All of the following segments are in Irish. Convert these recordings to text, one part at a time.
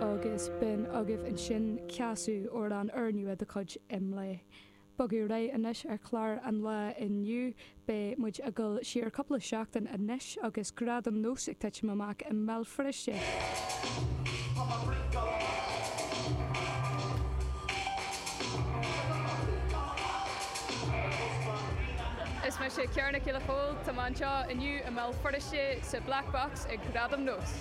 Agus b'in agaibh ansin céasadh amhrán úrnua de chuid Imlé. Bogadh ar aghaidh anois ar chlár an lae inniu. Beidh muid ag dul siar cúpla seachtain anois agus Gradaim Nós ag titim amach i mBéal Feirste. Is mise Ciara Nic Giolla Chomhaill. Tá mé anseo inniu i mBéal Feirste sa Black Box ag Gradaim Nós.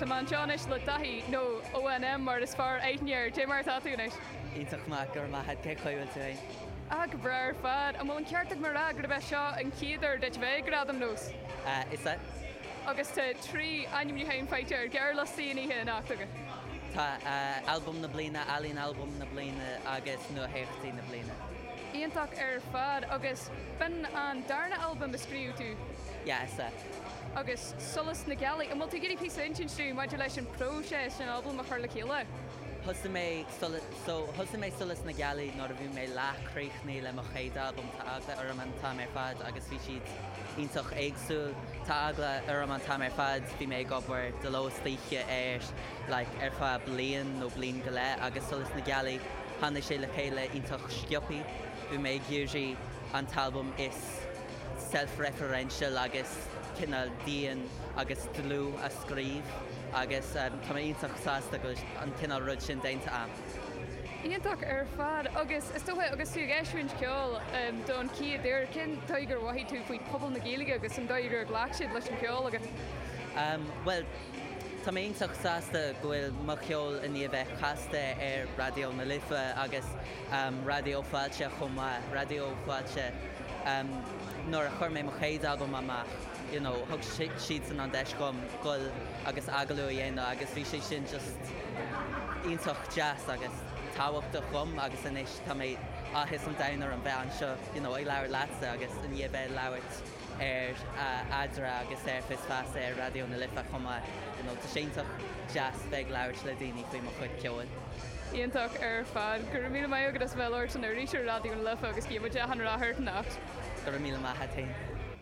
Tá mé anseo anois le Daithí, nó ONM mar is fearr aithne air. Cad é mar atá tú anois? Iontach maith, go raibh maith a'd, cé chaoi bhfuil tú fhéin? Ah, go breá ar fad. An bhfuil an ceart agam a rá gurb é seo an chéad uair duit bheith ag Gradaim Nós? Ah, is ea. agus tá trí ainmniúchán faighte ar ghearrliostaí an oíche anocht agat. Tá Albam na Bliana, Ealaín Albaim na Bliana agus Nuatheachtaí na Bliana. Iontach ar fad! Agus b'in an darna albam a scríobh tú? Yeah, is é. agus Solas na Gealaí. An bhfuil tú ag iarraidh píosa a insint dúinn maidir leis an próiseas an albam a chur le chéile? Thosaigh mé Solas. So, thosaigh mé Solas na Gealaí nuair a bhí mé leath críochnaithe le mo chéad albam, tá eagla orm an t-am ar fad agus bhí siad iontach éagsúil. Tá eagla orm an t-am ar fad, bhí mé ag obair de ló is d'oíche air like ar feadh bliain nó bliain go leith agus Solas na Gealaí, tháinig sé le chéile iontach sciobthaí. Bhí mé ag iarraidh an t-albam is self-referential agus cineál dian agus dlúth a scríobh agus tá mé iontach sásta go bhfuil an cineál rud sin déanta a'm. Iontach ar fad agus is dócha agus tú ag eisiúint ceol don chéad uair, cén dóigh gur mhothaigh tú faoi pobal na Gaeilge agus an dóigh gur ghlac siad leis an cheol agat? Bhuel tá mé iontach sásta go bhfuil mo cheol i ndiaidh a bheith casta ar Raidió na Life agus Raidió Fáilte chomh maith, Raidió Fáilte nuair a chuir mé mo chéad albam amach, you know, thug siadsan an deis dhom gol agus agallamh a dhéanamh agus bhí sé sin just iontach deas agus tábhachtach dhom agus anois tá mé áthas an domhain orm bheith anseo, you know, ag labhairt leatsa agus i ndiaidh bheith ag labhairt ar Eadra agus ar Fios Feasa ar Raidió na Life chomh maith, you know, tá sé iontach deas bheith ag labhairt le daoine faoi mo chuid ceoil. Iontach ar fad. Go raibh míle maith agat as a bheith ag labhairt san iris ar Raidió na Life agus guímid gach rath ort anocht. Go raibh míle maith a'd.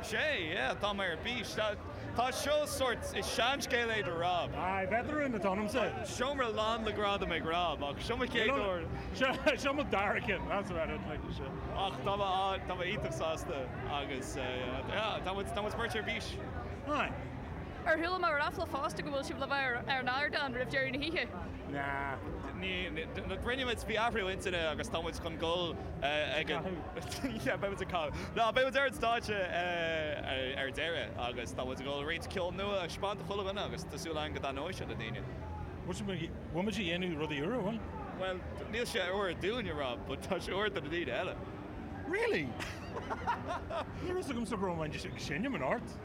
Sea, yeah, tá mé ar bís. Tá seo sórt, is seanscéal é seo do Rob. Aye, beidh tú in it ionamsa. Seomra lán le gradaim ag Rob, ach seo mo chéad uair. Seo mo dara ceann, that's about it, like, seo. Ach tá mé, tá mé iontach sásta agus, yeah, tá muid, tá muid beirt ar bís. Aye. Ar chuala mé ráfla fosta go bhfuil sibh le bheith ar an ardán roimh deireadh na hoíche? Nah. Ní, rinne muid, bhí athrú intinne agus tá muid chun dul ag an, Yeah, beidh muid ag canadh. Nah, beidh muid ar an stáitse ar deireadh agus tá muid ag dul roinnt ceol nua a thaispeáint do chuile dhuine agus tá súil againn go dtaitneoidh sé le daoine. Bhuel, bhfuil muid ag déanamh rudaí úra, bhfuil? Bhuel, níl sé úr dúinne, Rob, but tá sé úr do na daoine eile. Really? Ní raibh a fhios agamsa go raibh muid ag seinm anocht.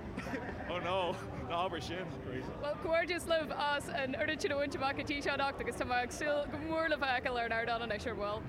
Oh no, ná habair sin, Grace. Bhuel, comhghairdeas libh as an oiread sin a bhaint amach go dtí seo anocht agus tá mé ag súil go mór le sibh a fheiceáil ar an ardán anois ar ball.